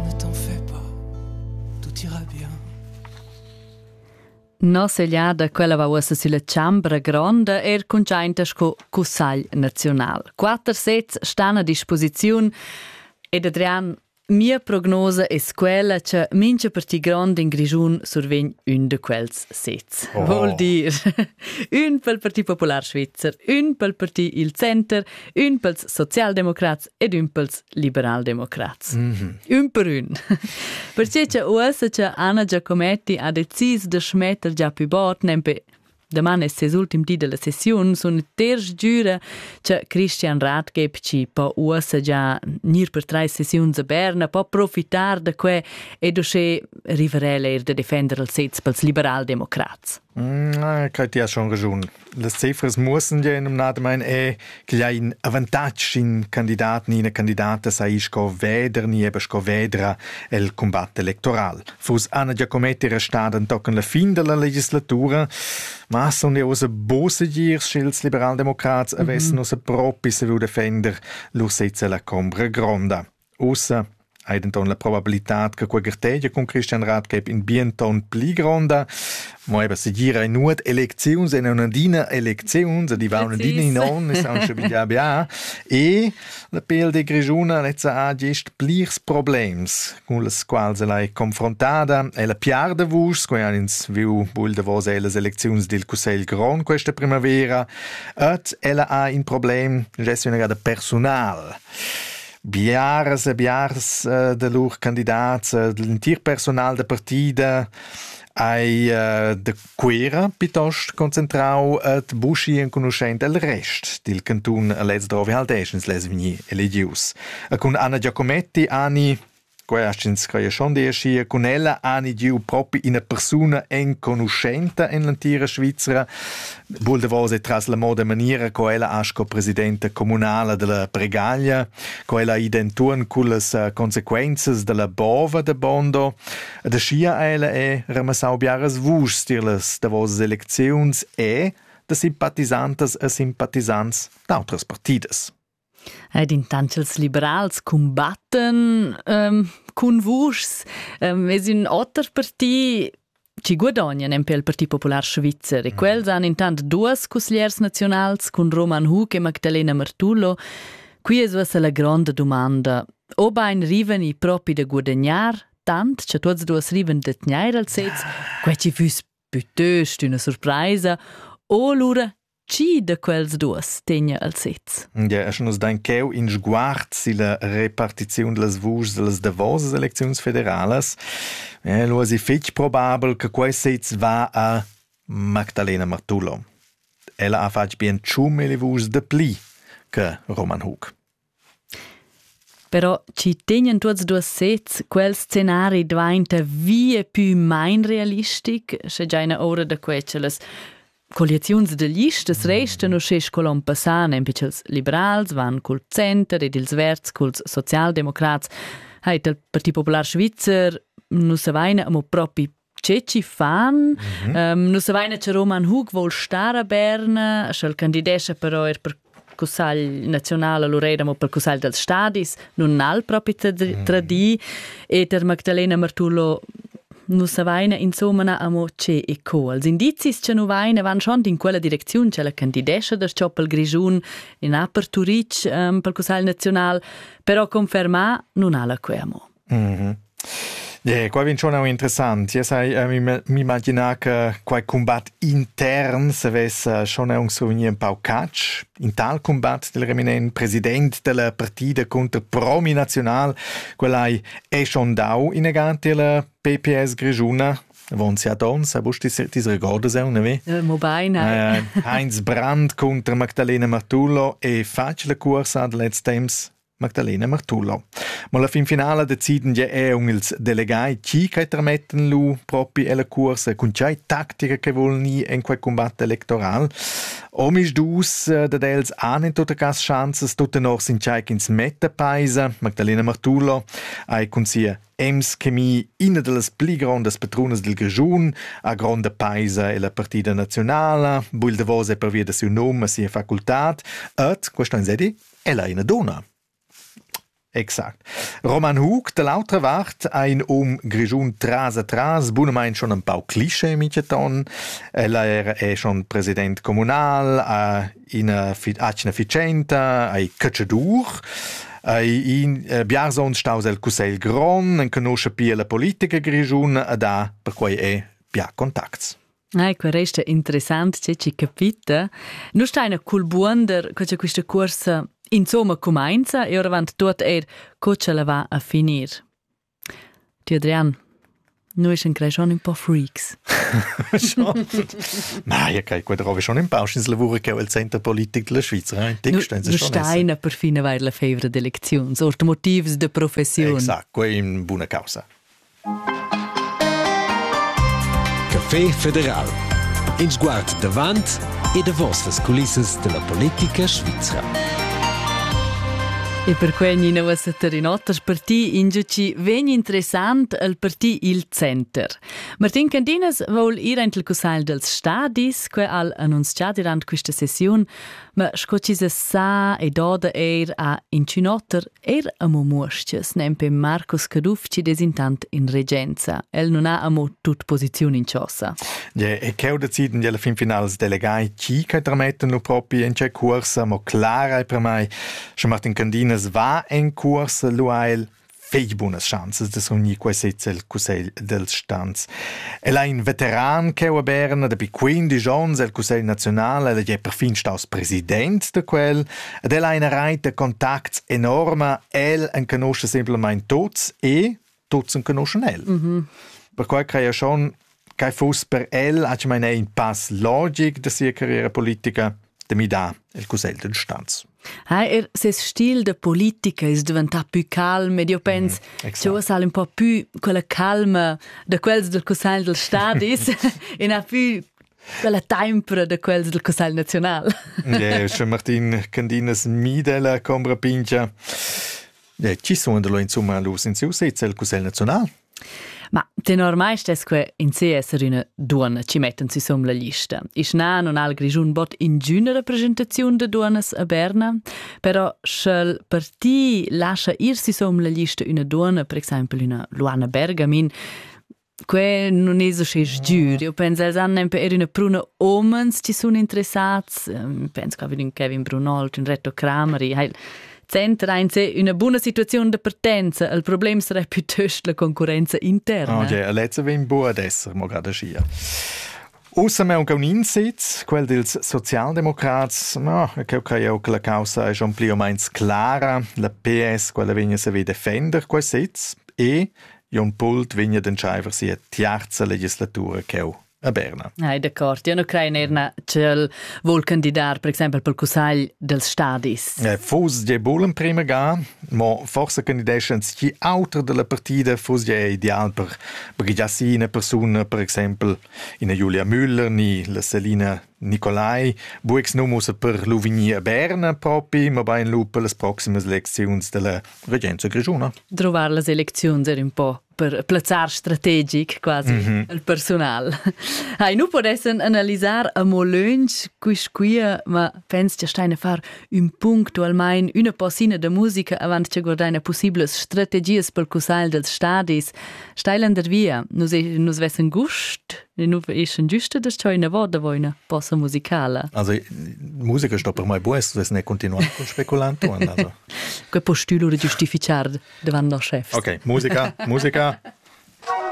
ne t'en fais pas, tout ira bien. Noss'egliada quella va uossa sülla chambra gronda, er cuntschainta sco Cussagl naziunal. Quatter sets stan a disposiziun ed Adrian, mia prognosa es quella cha mincha parti grond in Grischun survegn ün da quels sets. Oh. Vuol dir ün pel Parti Popular Svizzer, ün pel Parti Il Center, ün pels Sozialdemocrats ed ün pels liberaldemocrats. Mm -hmm. Ün per ün. Perciè cha uossa cha Anna Giacometti ha decis da schmetter già pü bot, nempe Daman es ses ultim di della sessiun, sun terz giura cha Christian Ratgeb ci po uossa già gnir per trais sessiuns a Berna, po profitar da que ed usche rivarel eir da defender il sez pels liberaldemocrats. Quai ti has schon raschun. Las cifras muossan gia numnadamain er ch'igl ha in avantatg in candidat ni ina candidata saja sco veder ni eben sco vedra el cumbat electoral. Fuss Anna Giacometti restada entochen la fin dalla legislatura, ma sun jau ussa bo segir sch'ils liberaldemocrats avessan ussa propi saviu defender lur sezza la combra gronda. Ussa hai denton la probabilitad che quei gartegia cun Christian Rathgeb in bien ton pli gronda. Mo eben segir ein nuot elecziuns en un'adina elecziuns e di va un'adina in on is aunc schon bia bia e la PLD grischuna lezza ha gest plirs problems cun las quals ella è confrontada e la piar da vus quei han ins viu bul davos ellas elecziuns dil Cussegl grond questa primavera et ella ha in problem gest una gada personal Biaras e biars eh, da lur candidats, eh, l'entir personal da partida ei eh, de Cuera piuttost concentrau et buschi enconuschent el rest dil cantun lez drovi haldeschens les vegni eligius. E cun Anna Giacometti ani Quei ha ins creia schon deschia cun ella ani giu propi ina persuna enconuschenta en l'entira Svizra. Vul davos e tras la moda maniera co ella ha sco presidenta communala della Bregaglia, co ella ha id enturn con las eh, consequenzas della bova de Bondo. E da scia ella è ramassau biaras vuschs dir las davos elecziuns e da simpatisantas e simpatizants d'autras partidas. Ed intant ch'ils liberals cumbattan ehm cun vuschs, ehm es ün oter parti chi guadognan empè il Parti popular svizzer e quels han intant duos cusgliers naziunals cun Roman Hug e Magdalena Martullo. Qui es uossa la gronda dumanda. Obain rivan i propi da guadagnar, tant cha tuots e duos rivan da tgnair al sez, quai chi füss pütöst üna surpraisa, o lura Chi de quels duos tegna el sez? Ja, e sche nus dain cheu in sguard silla repartiziun dellas vuschs dellas davosas elecziuns federalas, eh, lu es fetg probabel che quei sez va a Magdalena Martullo. Ella ha fatg bien tschum e le vuschs de pli che Roman Hug. Però chi tegnan tuots duos sezs quel scenari dvainta via pü main realistic, scha giaina oura da que cha las colliaziuns da listas restan uschè sco l'on passà, nempe cha'ls liberals van cul center ed ils verds culs socialdemocrats, ha it il Parti Popular Svizzer, nus avaina amo propi che ci fan mm -hmm. um, nu savaina cha Roman Hug vol star a Berna sch'el candidescha però er per cussagl nazional a Loreda, mo per cussagl dels stadis, nun al propi tradii, mm. e ter Magdalena Martullo nu savaina insomma amo che e co. Els indizis cha nu vaina van schon in quella direcziun cha la candidescha der Choppel Grischun in upper Turic um, per cussagl nazional, però confermà nun ha la que amo. Mm -hmm. Qua vin schon un interessant. Yes, hai, uh, m'imaginar che quai combat intern se vessa schon un souvenir un pau catch. In tal combat del reminent president della partida contro Promi National, quell'hai è schon dau inegante la PPS Grigiuna Von Siadons, a busti se ti ricordas un, ne? Eh, mo beine. Uh, Heinz Brandt contro Magdalena Martullo e facile cursa ad letz temps Magdalena Martullo. Ma la finfinala deciden ja er um ils delegai chi che tramettan lu propi ella cuorsa cun tgei tactica che vollen i en quei combatt electoral. Om is dus eh, dat els an in tutte cas chances tutte nor sin tgei ch'ins metta paisa. Magdalena Martullo ha cun sia Ems Chemie ina delles pli grondas patrunas del Grigiun, a gronda paisa e la partida nazionala, buil davos è per via da siu num a sia facultad. Et, questa in sedi? Ella è ina dunna. Exact. Roman Hug da l'autra vart ha in um grischun tras a tras, bunamain schon ein pau cliché miteton. Ella era è schon president communal, ha ina atgna ficenta, ha cacciadur. Ei in eh, biarsons staus el cussegl grond, enconosce pia la politica grischun e da perquei è bia contacts. Ai, quel resta interessant tge che capita. Nu steina cul buonder co cha quista cuorsa insomma cumainza e oravant tuot eir co cha la va a finir. Ti Adrian, noi sun crei schon un po' freaks. Ma ja kai qua drove schon in pau schins lavura che il center politic della Svizzera in text nu steina perfina vair la fevra d'elecziuns, or motivs de professiun. Exact, quei è una causa. Café federal. In sguard davant e davos las culissas della politica svizra. E per quei ni nova Satarinotta parti ingiuci vegn interessant al parti il center. Martin Candinas voul ir ent il cussagl dels stadis, que al annuncià durant questa sessiun, Ma sco ti se sa e doda eir a inchün oter, eir amo muoschias nempe Marcus Caduff ci des intant in regenza. El non ha amo tut posiziun in chosa. Ja, e cheu deciden di alla fin finals delegai chi che trametten lu propi in c'è cuorsa, mo clara e per mai, sche Martin Candinas va en cuorsa lu ha el fetg bunas schanzas da s'unir quai sez el cussegl dels stans. El ha in veteran che ho Berna dapi 15 onns el cussegl nazional ed è perfin staus president da quel ed el ha ina reit da contacts enorma el en conosce semplamein tots e tots en conoschen el. Mm -hmm. Perquai craja schon Quai fuss per el atgmaina in pass logic da sia carriera politica da midar il cussegl d'instanz. Ha er ses stil da politica es diventà pü calm ed io pens mm, cha uossa al un po pü quella calma da quels del Cussagl del Stadis e na pü quella tempra da quels del Cussagl nazional. yeah, sche Martin Candinas mida la combra pingia. Yeah, chi sun da lo insomma los in siu sez il Cussegl nazional? Ma tenor mai stess que in se esser üna duonna chi mettan sü som la lista. Isch na non al Grischun bot ingüna representaziun de duonnas a Berna, però sch'el parti lascia ir sü som la lista üna duonna, per exaimpel üna Luana Bergamin, que non es usche sgiür. Io penso els han nempe er üna pruna omens chi sun interessats. Ähm, penso che ün Kevin Brunol, ün Reto Crameri, heil Center ein se üna buna situaziun da partenza, il problem sarà piuttost la concurrenza interna. Okay, letzte vem buca ad esser mo gerade schier. Außer wir haben einen Insitz, quel dels Sozialdemokrats, no, eu crei eu che la causa è schon pli o meins clara, la PS, quella vegna se vi defender quel sitz e Jon Pult vegna d'entscheiver sia tiarza legislatura ch'eu a Berna. Ah, d'accord. Io non credo er na ch'el vuol candidar per exempel pel cussagl dels stadis. Eh, fus je bul in prima ga, mo forse candideschens chi auter della partida fus je ideal per Brigiassina persuna per exempel ina Julia Müller ni la Selina Nicolai, buex nomus per Luvigny a Berna propi, ma bain lu per las proximas lecziuns della regenza grigiuna. Trovar las elecziuns er un po' per plazzar strategic quasi mm -hmm. il personal. Hai nu podessen analisar a mo lönch quis quia, ma pens che steine far ün punctualmein üna possina de musica avant che guardaina possibles strategies pel cussagl dels stadis. Steilen der via, nus, nus vessen gust ne nu eschen giuste das cheu ina voda voina posa musicala also musica sto per mai bues vess ne continuar con speculanto also que po stülo de giustificar davant der chef okay musica musica